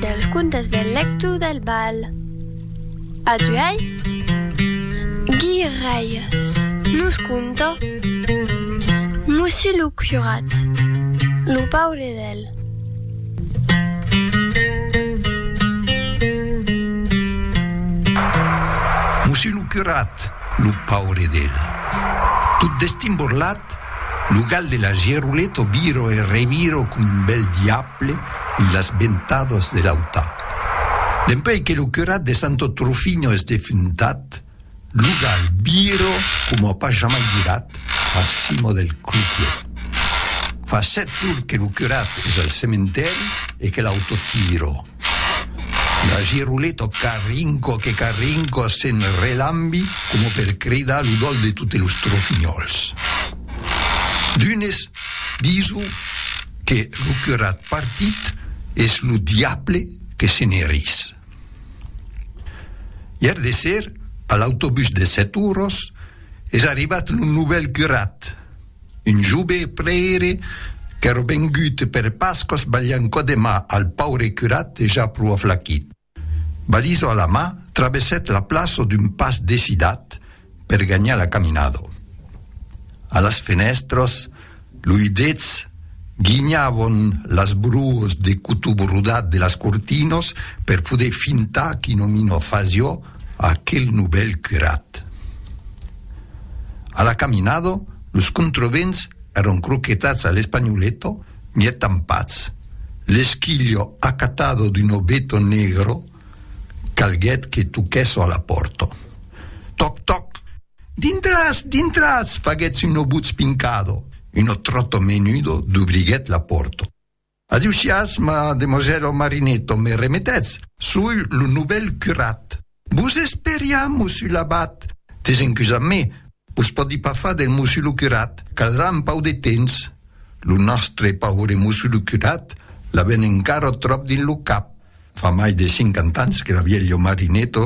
Dels contes del lector del bal. A tu ei, guirèies, nos conta Mossí lo curat, lo paure del. Mossí lo curat, lo paure del. Tot destimborlat. Cat. Lo gal de la Geruleto viro e reviro com un bèl diable en las ventadas de l'auta. Dempèi que lo curat de Santo Trufinho es defuntat, lo gal viro coma pas jamai virat a cima del clucle. Fa sèt jours que lo curat es al cementèri e que l'auta tiro. La girolè tot qu'arrinco que qu'arrinco se'n relambi coma per cridar lo dol de totes los trofinhòls. D'unes dison que lo curat partit es lo diable que se ne ris. Ièr de ser, a l'autobús de Sèt Oros, es arribat lo novèl curat, Un jove prèire qu'èra vengut per Pascas balhant cò de mà al paure curat dejà pro aflaquit. Baliso a la mà, travessèt la plaça d'un pas decidat per ganhar la caminada. A las fenèstras, luidets guinhavan las bruas de cotó brodat de las cortinas per poder fintar qu'i nomina fasiá Aquel novèl curat. A la caminada, los contrevents èran croquetats a l'espanholeta, mièg tampats. L'esquilha acatada d'un obeto negre calguèt que toquèssa a la pòrta. Tòc, tòc! Dintratz, dintratz! faguètz una votz pincada. Una tròta menuda dubriguèt la pòrta. Adiu siatz ma demosèla Marinetto, me remetètz, soi lo novèl curat. Vos esperiam, mossu l'abat! Desencus a me, vos pòdi pas far del mossu lo curat, caldrà un pau de temps. Lo nòstre paure mossu lo curat l'aven encara tròp dins lo cap. Fa mai de cinquanta ans que la vièlha Marinetto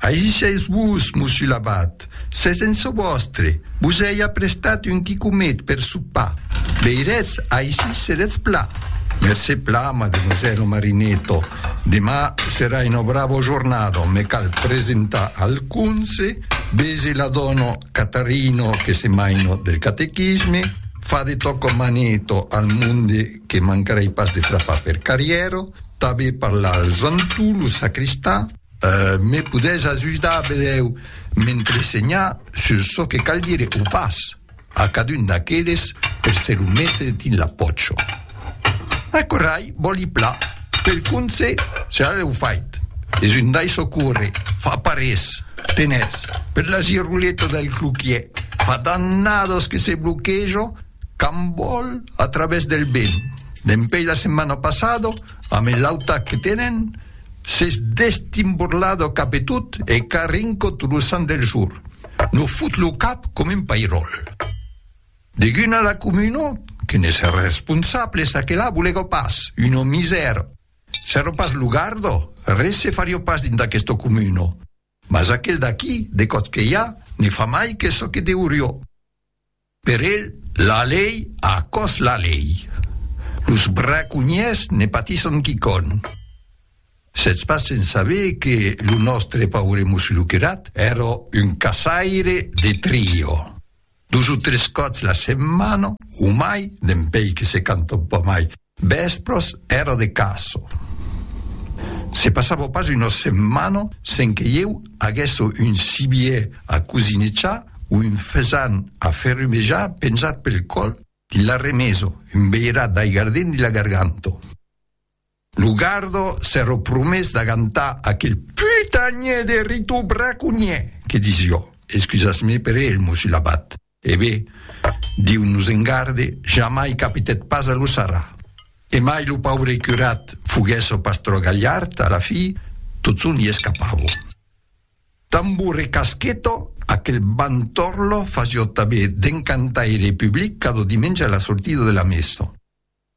Agisètz-vos, Mossu Labat, s'es en çò vòstre, vos ei aprestat un quicomet per sopar, veiretz, aicí seretz plat. Mercé pla, Mademoiselle Marineto, demà serà una brava jornada, me cal presentar al conse, vese la dòna Catarino que se maina del catequisme, fa de tòca maneta al monde que mancarei pas de frapar per carrièra, tanben parlar al Jantu, lo sacristà, Me podètz ajudar, velèu m'entresenhar sus çò que cal dire o pas a cadun d'aqueles per se lo metre dins la pòcho? Aquò rai, vòli pla, pel conse, serà lèu fait. Es un dai socorre, fa parés, tenètz, per la giroleta del cloquier, fa dannados que se bloquejo, Qu'an vòl a travès del ben. Dempèi la setmana passada, amb el lauta que tenen, s'es destimborlada cap e tot e qu'a rincot lo sant del jorn. No fot lo cap com un pairòl. Deguna la comuna, que n'es responsable, ça que la volega pas, una misèra. S'èra pas lo garda, res se fariá pas dins d'aquesta comuna. Mas aquel d'aquí, de còps que i a, ne fa mai que çò que deuriá. Per el, la lei a còs la lei. Los braconhièrs ne patisson quicòm. Sètz pas sens saber que lo nòstre paure Musluquerat èra un caçaire de trio. Dos o tres còps la setmana, o mai, dempèi que se canta un pauc mai, Vèspres èra de caço. Se passava pas una setmana sen que ieu aguèsse un cibiè a cosinejar o un fesan a ferrumejar penzat pel còl dins la remesa, un beirat d'aigar dins dins la garganta. Lo garda s'èra promés d'agantar aquel putanhè de Ritu braconhièr que disiá, excusatz-me per el mossulabat, E be, Diu nos en garde, jamai capitèt pas a lo sarrà. E mai lo paure curat foguèt çò pas trò galhard, a la fi, totçon li escapavo. Tambo recasqueto, aquel bantorlo fasió tanben d'encantaire public cada dimenge a la sortida de la messa.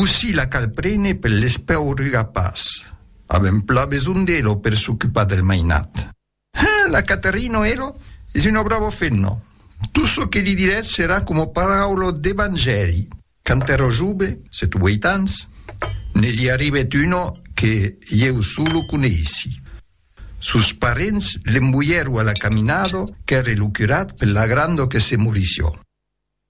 Cossí la cal prene per l'espeauruga pas avèm pla besonh d'elo per s'ocupar del mainat. Hein, la Caterino, elo es un bravo fenno, tot çò que li dirètz serà coma paraula d'evangèli. Quand èro jove, sèt o ueit ans, ne li arribèt una que ieu solo coneissi. Sos parents l'emboièro a la caminada qu'ère lo curat per la granda que se morissió.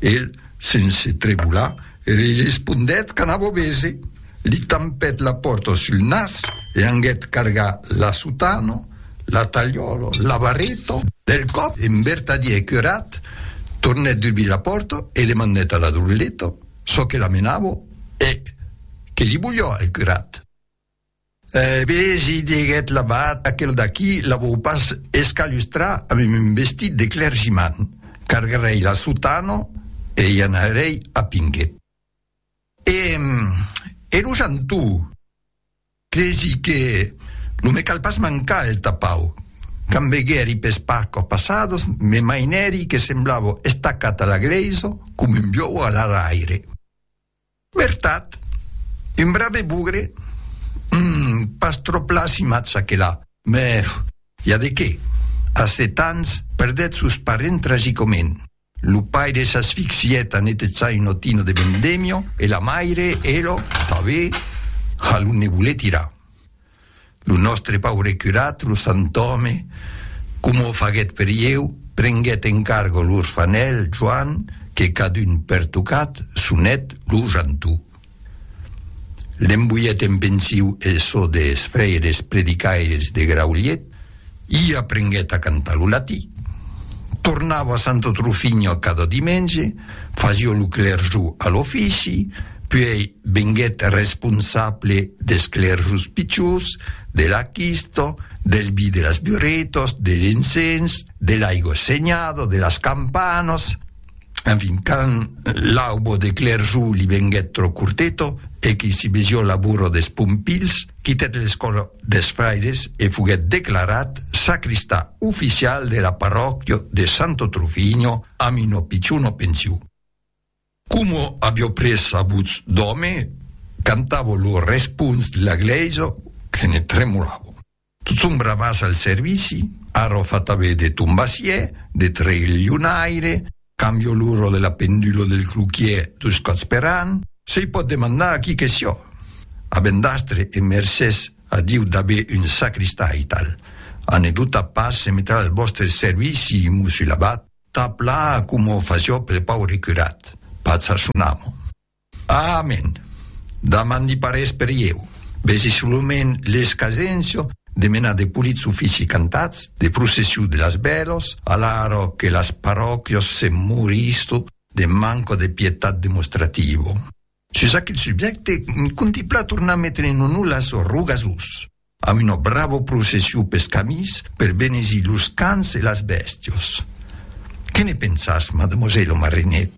El, sense tremolar, li respondèt qu'anava obese, li tampèt la pòrta sul nas e anguèt cargar la sotana, la talhòla, la barreta, del còp en vertadièr curat, tornèt dubrir la pòrta e demandèt a la droleta çò que la menava e que li voliá el curat. Eh ben, si diguèt l'abat, aquel d'aquí la vòu pas escalustrar amb un vestit de clergiman. Cargarèi la sotana e i anarèi a Pinge. E, e lo janto? Cresi que lo me cal pas mancar el tapau. Quand veguèri pes parcos passados, me mainèri que semblava estacat a la glèisa com un biòu a l'araire. Vertat? Un brave bugre? Hum, pas tròp lassimatz aquela. Mèf, i a de qué? A sèt ans, perdèt sos parents tragicomènt. Lo paire s'asfixièt en etetzar un otino de vendemio e la maire, elo, tabé, a lo ne voler tirar. Lo nòstre paure curat, lo santòme, coma o faguèt per ieu, prenguèt en cargo l'orfanèl Joan que cadun pertocat sonèt lo Jantú. L'emboièt en pensiu el sò des fraires predicaires de Graulhet, I aprenguèt a cantar lo latí. Tornava a Santo Trufinho a cada dimenge, fasió lo clerjó a l'ofici, puèi venguèt responsable des clerjos pichós, de la quista, del vi de las burretas, de l'encens, de l'aigua senhada, de las campanas. En fin, quand l'aubo de clerjou li venguèt trò curteto e qu'i si besió l'aburro des pompilhs, quitèt l'escòla des fraires e foguèt declarat sacristà oficial de la parròquia de Santo Trufigno amb una pichona pensiu. Coma avió pres sa votz d'òme, cantavo lo responç de la glèisa que ne tremolava. Tot son bravas al servici, arro fatave de tombassier, de trelhionaire, cambio l'urro de la pendulo del cruquier dus còps per an, se-i pòt demandar a qui que sió, a vendastre e mercés a Diu dave un sacristà e tal. A ne doutar pas, se metrà al vòstre servici, mossur l'abat, tap-la coma o fasió pel paure curat, pas a son amo. Amen! Damain li parés per ieu. Vesi solament l'escasencio de menar de polits ofici cantats, de processiu de las bèlos, alaro que las parròquios se moristo de manco de pietat demostrativo. Sus aquel subjècte, contiplà tornar metre en onor las Rogasòs, amb una bravo processiu pes camins per benezir los cans e las bèstios. Que ne pensas, mademosèlo Marinèt?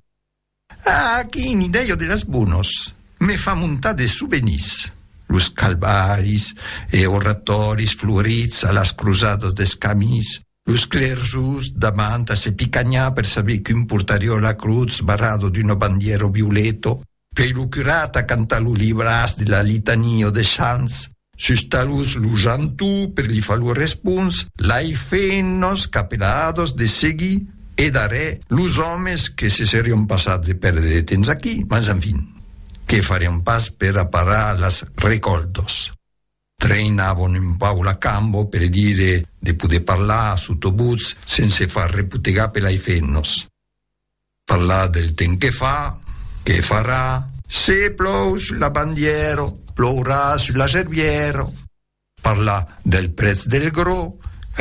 Ah, quini dèia de las bonas! Me fa montar de sovenís. Los calvaris e oratòris florits a las crosadas dels camins, los clerjos damant a se picanhar per saber qu'un portarió a la crotz barrado d'una bandièra violeta, qu'ei lo curat a cantar lo libràs de la litania des sants, Sus talús lo janto per li far lo respons, l'ai feint nos capeladas de seguir e darrè los òmes que se serion passats de perdre de temps aquí, mas enfin, que farion pas per aparar las recòltas. Treinavon un pauc la camba per dire de poder parlar sota votz sense far repotegar per l'ai feint nos. Parlar del temps que fa, que farà. Se plou sul la bandièra, plourà sul la gerbièra. Parlar del prètz del grò,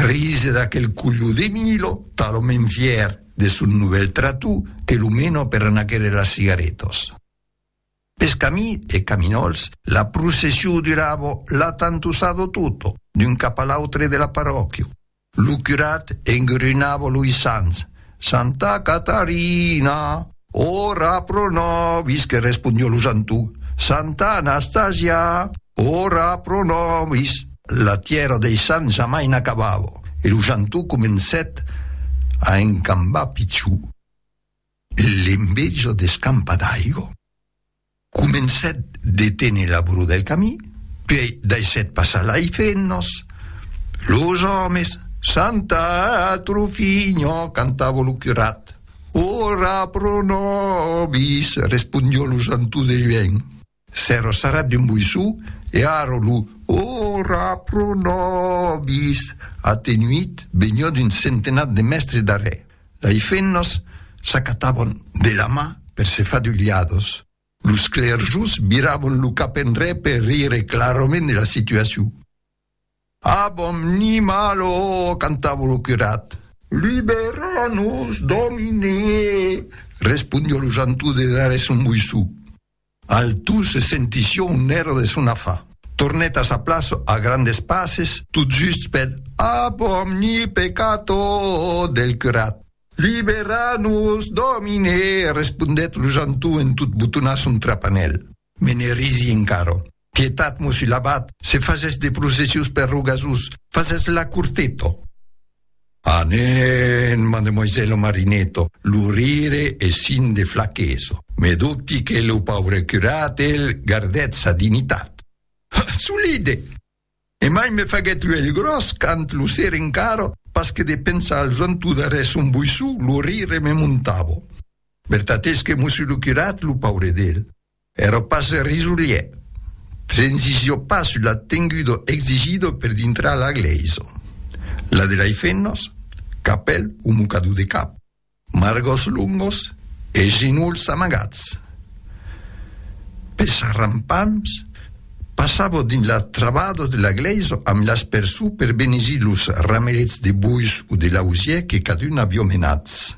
rise d'aquel culhó de Milo, talament fièr de son novèl tratú que lo mena per anar quèrre las cigaretas. Pes camí e caminòls, la processiu duravo la tantussado tutto, d'un cap a l'autre de la parròquiu. Lo curat engrunavo loi sants, Santa Catarina, ora pro nobis que respondió lo Jantú, Santa Anastasia, ora pro nobis. La tièra dei sants jamai n'acabavo e lo Jantú comencèt a encambar pichou. L'enveja d'escampa d'aigo comencèt de téner la bro del camí, puèi daissèt passar lai fennos. Los òmes, Santa atro figno, cantava lo curat. Ora pro nobis, respondió lo Santú de luènh. S'ero sarrat d'un boissou e aro lo Ora pro nobis atenuit benhò d'un centenat de mèstres d'arrè dai fennos s'acatabon de la ma per se fa d'ulhados. Los clerjos virabon lo cap enrè per rire clarament de la situacion. Abom ni mal o cantavo lo curat. Libera-nos, Domine! respondió lo jantou de darrè son boissou. Altou se sentission un èra de son afa. Tornèt a sa plaça a grandes passes, tot just per Ab omni peccato del curat. Libera-nos, Domine! respondèt lo janton en tot botonar son trapanèl. Me ne risi encara. Pietat, mossi l'abat, se fasètz de processius per Rogasús, fasètz la curteta. Anen, mademoisèlo Marineta, lo rire es sign de flaquesa. Me dubti que lo paure curat el gardèt sa dignitat. Ha! Solide! E mai me faguèt uèlh gròs quand lo ser encara, pas que de pensar al zonto darrèr son boissó, lo rire me montava. Vertat es que mossi lo curat, lo paure d'el, Ero pas risolier. Transició pas sul attengudo exigido per dintrar la glèisa. La de lei femnas, capèl o mocador de cap, margòs longos e genolhs amagats. Pes arrampams, passavo dins las travadas de la glèisa amb l'aspersor per benezir los ramelets de bois o de lausièr que cadun avió menats.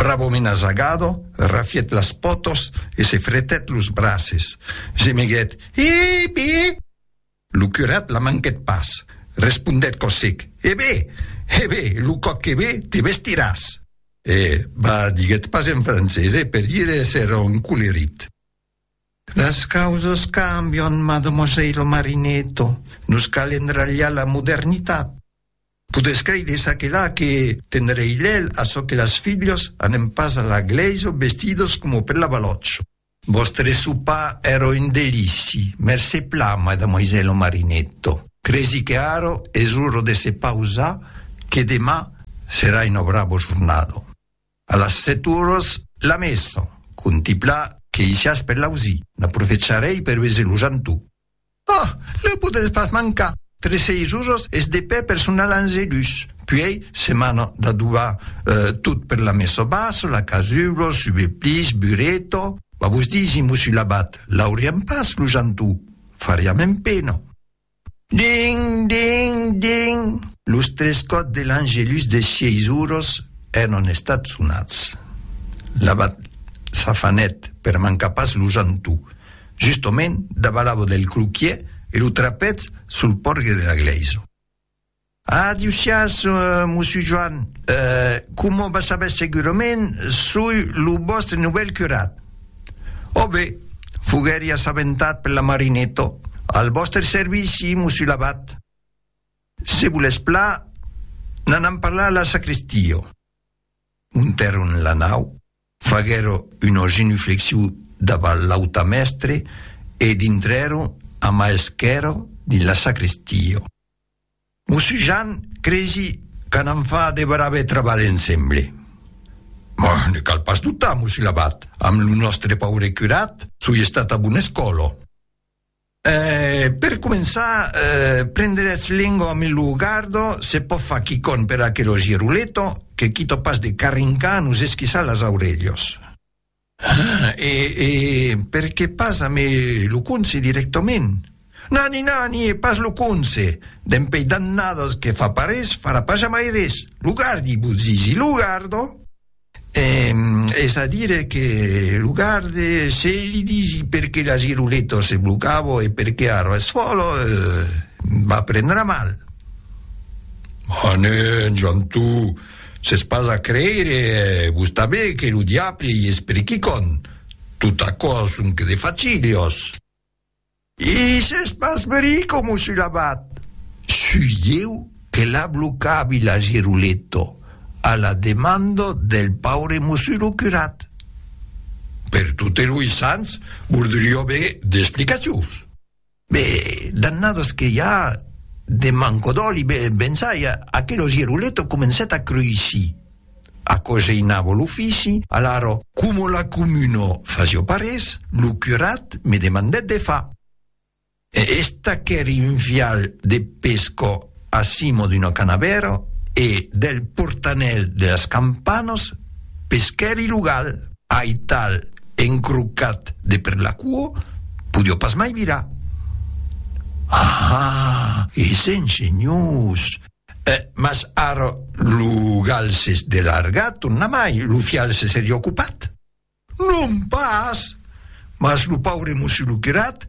Bravo mena Zagado, rafièt las pòtos e se fretèt los braces. Gemeguèt, Iip! Iip! Lo curat la manquèt pas. Respondèt cò sec, E be! E be! Lo còp que ve, te vestiràs! E va, diguèt pas en francés, e per dire èsser encolerit. Las causas cambion, mademoisèilo Marinetto. Nos cal endralhar la modernitat. Podes creire ça que la que tenrei lel a çò que las filhos anem pas a la glèisa vestidos como per la balòtch. Vòstre sopar ero un delici, mercé pla madamoisèlo Marinetto. Cresi que ara es ora de se pausar que demà serà una bravo jornada. A las sèt oras, la mèssa. Contempla que i siás per l'ausir. N'aprofecharèi per veser lo jantou. Ah! Lèu podrètz pas mancar! Tres seis oras es de pè per sonar l'angelus. Puèi, se mana d'adobar tot per la mèssa bassa, la casulo, subeplix, bureto. Vos disimo sul abat, l'auriam pas, lo jantou? Fariam empena. Ding! Ding! Ding! Los tres còps de l'Angelus de sièis oros èran estats sonats. L'abat s'afanèt per mancar pas lo jantou, justomènt davalavò del cloquièr e lo trapètz sul pòrgue de la glèisa. Adiu siás, Mossur Joan. Coma vas saber segurament, soi lo vòstre novèl curat. Ò be, foguèri assabentat per la Marineta. Al vòstre servici, Mossur l'abat. Se volètz pla, n'anam parlar a la sacrèstia. Montèron la nau, faguèron una genuflexion davant l'autamèstre e dintrèron a mà esquèrra dins la sacrèstia. Mos Jan, cresi que n'an fa de brave trabalh ensemble. Mah, ne cal pas doutar, mos Labat, amb lo nòstre paure curat, soi estat a bona escòla. Eh, per començar, prendretz lengo amb lo gardo, se pòt far quicòm per aquelo Giruleto, que quito pas de carrincar nos esquissar las aurelhas. Ah, e, e perqué pas a me lo conse directament? Nani, nani, e pas lo conse! Dempèi dannadas que fa pas res, farà pas jamai res! Lo gardi, vos disi, lo gardo! E, es a dire que lo garde, se li disi perqué la giruleta se blocava e perqué ara es fòla, va prendre mal. Manen, Jantu! S'es pas a creire, vos tanben, que lo diable i es per quicòm. Tot aquò son que de facilhos. I s'es pas verí com o sul abat. Sui ieu que la blocavi la Giruletto a la demanda del paure mosuro curat. Per totes loi sants, vordrió aver d'explicacions. Be, dannados que i a de manco d'òli, be, bensai, aquelo giruleto comencèt a cruisir. Aquò geinava l'ofici, alaro, coma la comuna fasió pas res, lo curat me demandèt de far. Esta qu'èri un vial de pescò A cimo d'una canavèra e del portanèl de las campanas peschèri lo gal. Aital encrocat de per la cuò, podió pas mai virar. Ahaa! E sent senhors! Eh, mas ara lo gal s'es delargat tornamai, lo fial se seria ocupat. Non pas! Mas lo paure Mossur Luquerat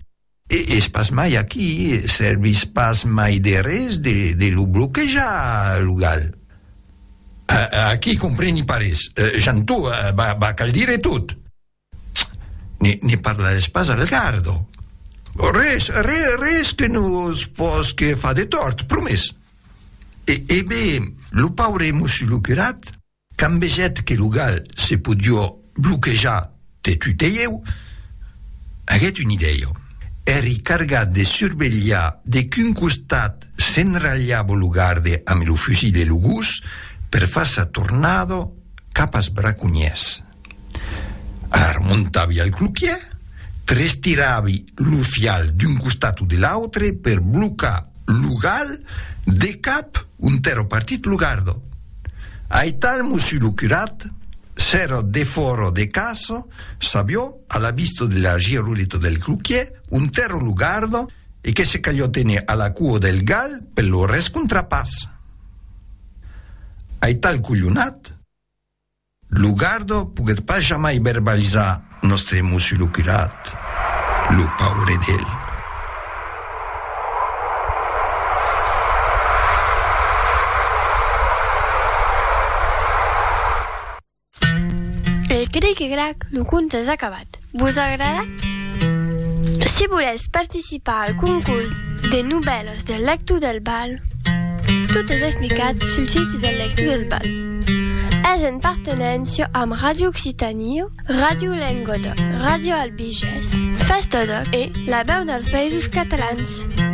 es pas mai aquí, servís pas mai de res de lo bloquejar, lo gal. Aquí compreni pas res, Jantó, va cal dire tot! Ne parlarès pas al gardo. Res, res que nos posque far de tòrt, promés! E ben, lo paure Mossur Luquerat? Quand vegèt que lo gal se podió bloquejar de tutèieu, aguèt una idèia. Èri cargat de survelhar de quin costat s'enralhava lo garde amb lo fusil e lo gos per far sa tornada cap as braconhèrs. Alara montavi al cloquièr, trestiravi lo fial d'un costat o de l'autre per blocar lo gal de cap ont'èra partit lo gardo. Aital Mossu lo curat s'èra defòra de casa, s'avió a la vista de la giroleta del cloquièr ont'èra lo gardo e que se calió tenir a la cua del gal per lo rescontrapàs. Aital colhonat. Lo gardo poguèt pas jamai verbalizar nòstre emoció lo curat, lo paure d'el. Pel cric e crac lo conte es acabat. Vos agrada? Si volètz participar al concurs de novèlas del Lector del Bal, tot es explicat sul siti del Lector del Bal. Es en partenéncia amb Ràdio Occitània, Ràdio Lenguadoc, Ràdio Albigés, Festòdoc e La Veu dels Països Catalans.